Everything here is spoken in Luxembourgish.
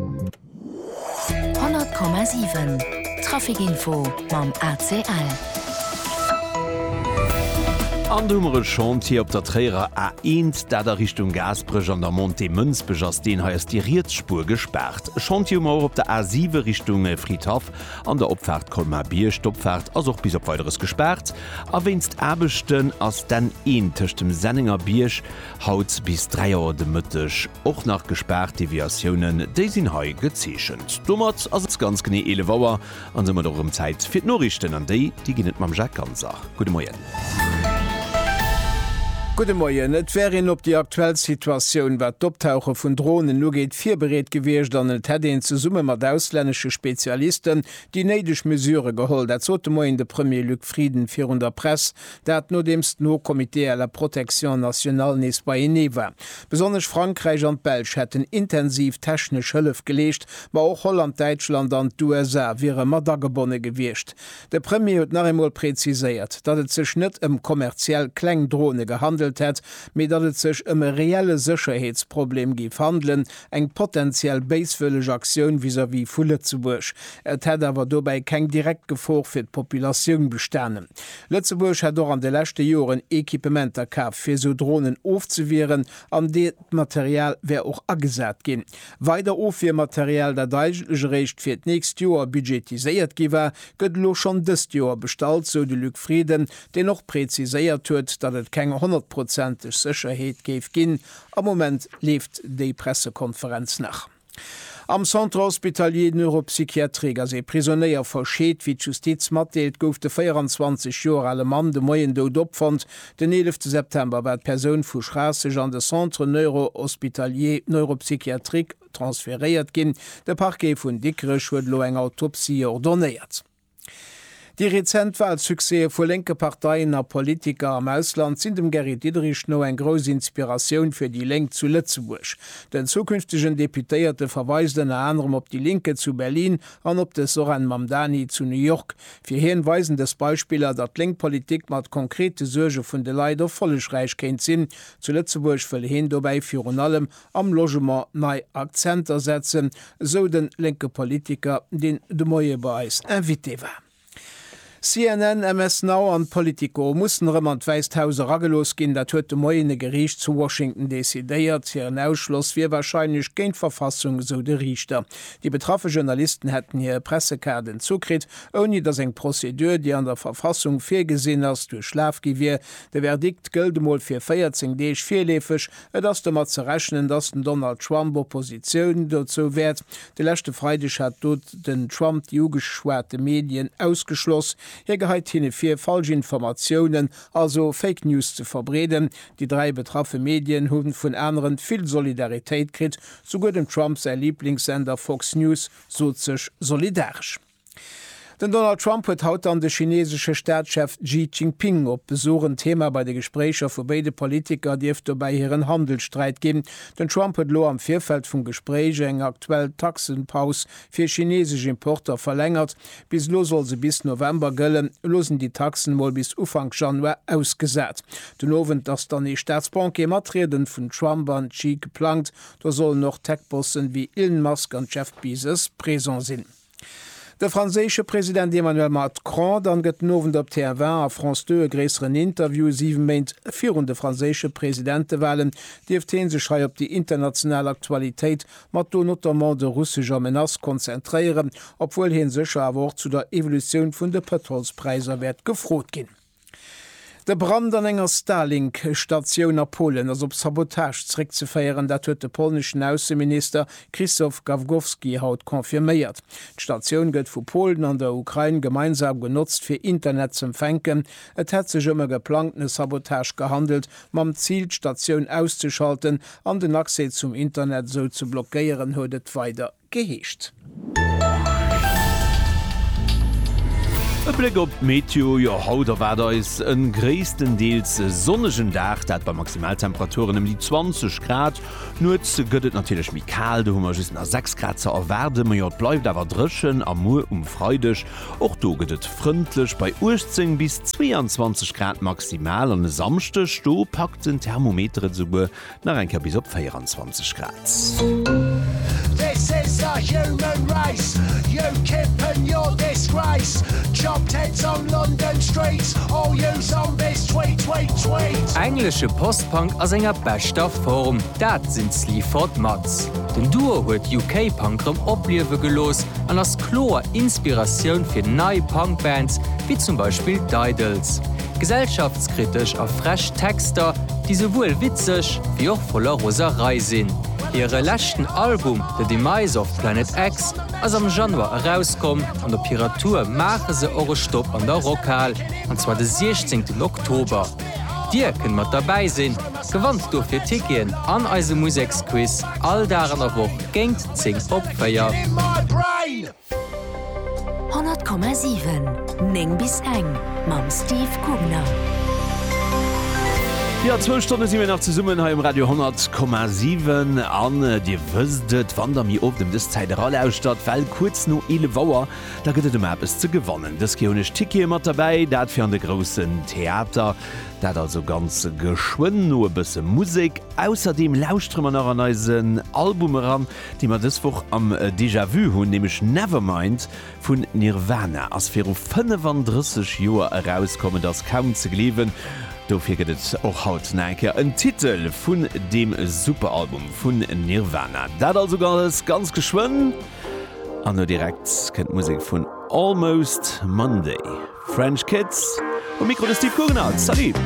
100,7 Trafic Info mam ACL. An do hu mer e Chantier op der Tréierer A1, dat a Richtung Gaasperech an der Montée Mënsbech ass. Deen hei ass déi riets Spuer gespaart. E Chantier hu mer och op der A7 Richtung Fridhaff an der Opfaart Colmar-Bierg. D'Opfaart ass och bis op Weideres gespaart a wéinst Aarbechten ass d'N1 tëscht dem Sennengerbierg Haut bis 3 Auer de Mëtteg och nach gespaart, Deviatiounen déi sinn hei gezeechent. Domat ass et ganz genee 11 Auer an soumat och erëm Zäit fir d'Noriichten an déi déi ginn et mam Jacques Ganser. Gudde Moien. Gudde Moien. Et wär een op déi aktuell Situatioun wat d'Optauche vun Dronen ugeet virbereet gewiescht an et hätt een zesumme mat auslännesche Spezialisten déi néideg Mesurë geholl. Dat sot de Moien de Premier Luc Frieden virun der Press Dat nodeems d'Haut Comité à la protection nationale nees beienee war. Besonnesch Frankräich an d'Belsch hätten intensiv technesch Hëllef geleescht, ma och Holland, Däitschland an d'USA wiere mat agebonne gewiescht. De Premier huet nach eemol preziséiert, datt et sech net ëm kommerziell kleng Drone gehandelt hätt, mee datt et sech ëm e reelle Sécherheetsproblem géif handelen, eng potentiell béiswëlleg Aktioun vis-à-vis vu Lëtzebuerg. Et hätt awer dobäi keng direkt Gefor fir d'Populatioun bestanen. Lëtzebuerg hätt och an de leschte Joren Equipementer kaf, fir esou Dronen ofzewieren an de d'Material wär och agesat ginn. Weider Ofwiermaterial, dat eigentlech eréischt fir d'nächst Joer budgetiséiert gi war, gëtt elo schonn dëst Joer bestallt, sou de Luc Frieden, deen och preziséiert huet, datt et keng honnertprozenteg Sécherheet géif ginn, Am Moment leeft déi Pressekonferenz nach. Am Centre Hospitalier Neuropsychiatrique ass ee Prisonéier verscheet. Wéi d'Justiz matdeelt, gouf de 24 Joer ale Mann de Moien dout opfonnt. Den eelefte September war d'Persoun vu Schraasseg an de Centre Neurohospitalier Neuropsychiatrique transferéiert ginn. De Parquet vun Dikrech huet elo eng Autopsie ordonnéiert. Déi rezent Walsuccèse vu lénke Parteien a Politiker am Ausland sinn dem Gary Diderich no eng grouss Inspiratioun fir déi Lénk zu Lëtzebuerg. Den zukünftegen Deputéierte verweist ënner anerem op déi Linke zu Berlin an op de Zohran Mamdani zu New York. Fir hien weisen dës Beispiller, datt lénk Politik mat konkrete Suerge vun de Leit erfollegräich kéint sinn. Zu Lëtzebuerg wëll heen dobäi virun allem am Logement nei Akzenter setzen, esou de lénke Politiker, deen de Moie bei eis Invité war. CNN, MS Now an Politico mussen erëm an d'Wäisst Haus eragelooss ginn. Dat huet de Moien e Geriicht zu Washington decidéiert. Hiren Ausschloss wier warscheinlech géint d'Verfassung, esou de Riichter. Déi betraffe Journalisten hätten hir Pressekaarden zukritt, ouni datt eng Prozedur, déi an der Verfassung virgesinn ass, duerchlaf gi wier. De Verdikt gëllt emol fir 14 Deeg virleefeg. Et ass domat ze rechnen, datt den Donald Trump Oppositioun dozou wäert. De leschte Freideg hat do den Trump déi ugeschwate Medien ausgeschloss. Hie geheit hinne vir, falsch Informatiounen, also Fake News ze verbreeden. Déi dräi betraffe Medien hu vun aneren vill Solidaritéit kritt. Souguer dem Trump säi Liblingssender Fox News sot sech solidaresch. Den Donald Trump huet haut dann de chineesesche Staatschef Xi Jinping op Besuch. En Thema bei de Gespréicher vu béide Politiker dierft dobäi hiren Handelssträit ginn. Den Trump huet elo am Virfeld vum Gespréich eng aktuell Taxepaus fir chineesesch Importer verlängert. Bis elo soll se bis November gëllen, elo sinn déi Taxen mol bis Ufank Januar ausgesat. Den Owend ass dann ee Staatsbanquet mat Rieden vun Trump an Xi geplangt. Do sollen och Tech-Bossen ewéi Elon Musk an Jeff Bezos present sinn. De franséische President Emmanuel Macron dann gëtt den Owend op TF1 a France 2 e gréisseren Interview. Siwe Méint virun de franséische Presidentewalen dierft hee sech hei op déi international Aktualitéit, mat do notamment de russescher Menace konzentréieren, obwuel hie sécher awer och zu der Evolutioun vun de Pëtrolspräisser wäert gefrot ginn. De Brand an enger Starlink-Statioun a Polen ass op Sabotage zeréckzeféieren. Dat huet de polneschen Ausseminister Krzysztof Gawkowski haut confirméiert. D'Statioun gëtt vu Polen an der Ukrain gemeinsam genotzt fir Internet z'empfänken. Et hätt sech ëm e geplangtene Sabotage gehandelt, mam Zil d'Statioun auszeschalten an den Accès zum Internet esou ze blockéieren, huet et weider. geheescht. E Bléck op d'Meteo, jo haut erwaart eis e gréisstendeels sonnegen Dag, dat bei Maximaltemperaturen ëm déi 20 Grad. Nuets gëtt et natierlech méi kal, do hu mer just nach 6 Grad ze erwaarden, ma jo et bleift awer dréchen. A muer um Freideg, och do gëtt et frëndlech bei 18 bis 22 Grad maximal. An e Samschdeg, do packt den Thermometer et esouguer Nach eng Kéier bis op 24 Grad. Englesche Post-Punk a senger beschter Form, dat sinn d'Sleaford Mods. Den Duo huet UK-Punk rëm opliewe gelooss an ass kloer Inspiratioun fir nei Punk-Bands, wéi zum Beispill d'Idles. Gesellschaftskritesch a frech Texter, déi souwuel witzeg wéi och voller Roserei sinn. Hire leschten Album The Demise of Planet X ass am Januar erauskomm an op hirer Tour maache se och e Stopp an der Rockhal, an zwar de 16 Oktober. Dir kënnt mat derbäi sinn, gewannt dofir Ticketen an eise Museksquiz all Dag an der Woch géingt 10 op 4. 100,7 9 bis eng mam Steve Gubner. Jo zwou Stonne si mir nach zesummen hei um Radio 10,7 an Dir wësst et, wann der mir op dem dës Zäit eralauschtert, well kuerz no 11 Auer da gëtt et ëmmer eppes ze gewannen. Dës Kéier hunn ech Tickete mat derbäi, dat fir an de groussen Theater. Dat also ganz geschwënn no e bësse Musek. Ausserdeem lauschtere mer nach an eisen Album eran, déi mer dës Woch am Déjà Vu hunn, nämlech Nevermind vun Nirvana, ass viru 35 Joer erauskomm. Et ass kaum ze gleewen, dofir gëtt et och haut nach eng Kéier en Titel vun deem Superalbum vun Nirvana. Dat also alles ganz geschwënn an elo direkt kënnt d'Musek vun Almost Monday. French Kids um Mikro, de Steve Guggenard, Salut!